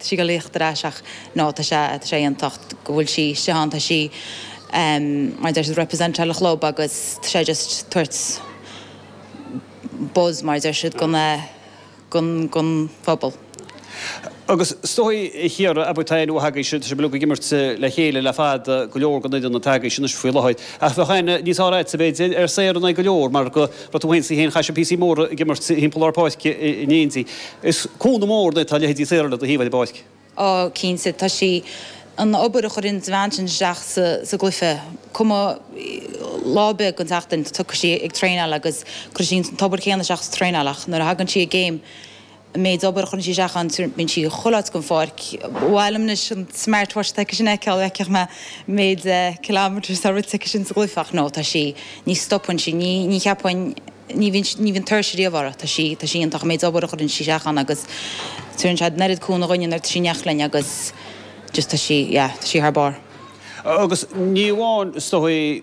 sí ag tíocht ar ais ach no tá sé tá sé iontach go bhfuil sí istigh ann tá sí mar a deir siad representáil an chlub agus tá sé just tabhairt buzz mar a deir siad gon gon gon phobal. Agus is dóichí, a Chiara, abair tá aon uair againn sin tá sibh ag imirt le chéile le fada go leor go na daoine atá agaibh sin anois faoi láthair ach bheadh aithne níos fearr agat a bheith ag dil ar saor in aghaidh go leor mar go raibh tú féin is í féin, chaith sibh píosaí móra ag imirt timpeall lár páirce in éindí. Is cúnamh mór duit go bhfuil leithéidí Sarah le do thaobh i lár páirce. Á, cinnte, tá sé. An obair a chuireann an bhean sin isteach sa gcluiche, cuma lá ar bith den tseachtain, tiocfaidh sí ag traenáil agus cuirfidh sí an t-obair chéanna isteach sa traenáil ach nuair a thagann sí i gcéim, An méid obair a chuireann sí isteach ann, bíonn sí chuile áit den pháirc. Ba mhaith liom anois an smartwatch atá aici sin a fheiceáil, bhfeicfeadh mé an méid kilometres atá rite aici sin sa gcluiche. Ach no, tá sí, ní stopann sí, ní, ní cheapfainn, ní bhíonn, ní bhíonn tuirse riamh uirthi. Tá sí, tá sí iontach, an méid obair a chuireann sí isteach ann agus cuireann sé an oiread cúnamh dhúinn nuair atá sí in éineacht linn agus just tá sí, yeah, tá sí thar barr. Agus ní amháin, is dóigh,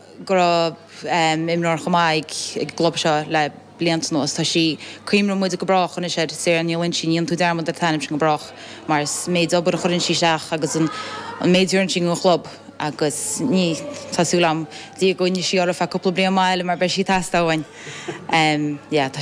go raibh imreoir chomh maith ag an gclub seo le blianta anuas. Tá sí cuimhneoidh muid go brách anois ar. Sarah Ní Loinsigh, ní dhéanann tú dearmad ar t'ainm sin go brách mar an méid obair a chuireann sí isteach agus an méid a dhéanann sí don chlub agus ní, tá súil agam le Dia go gcoinneoidh sí uirthi ar feadh cúpla bliain maith eile mar beidh sí ag teastáil uainn. Tá sí.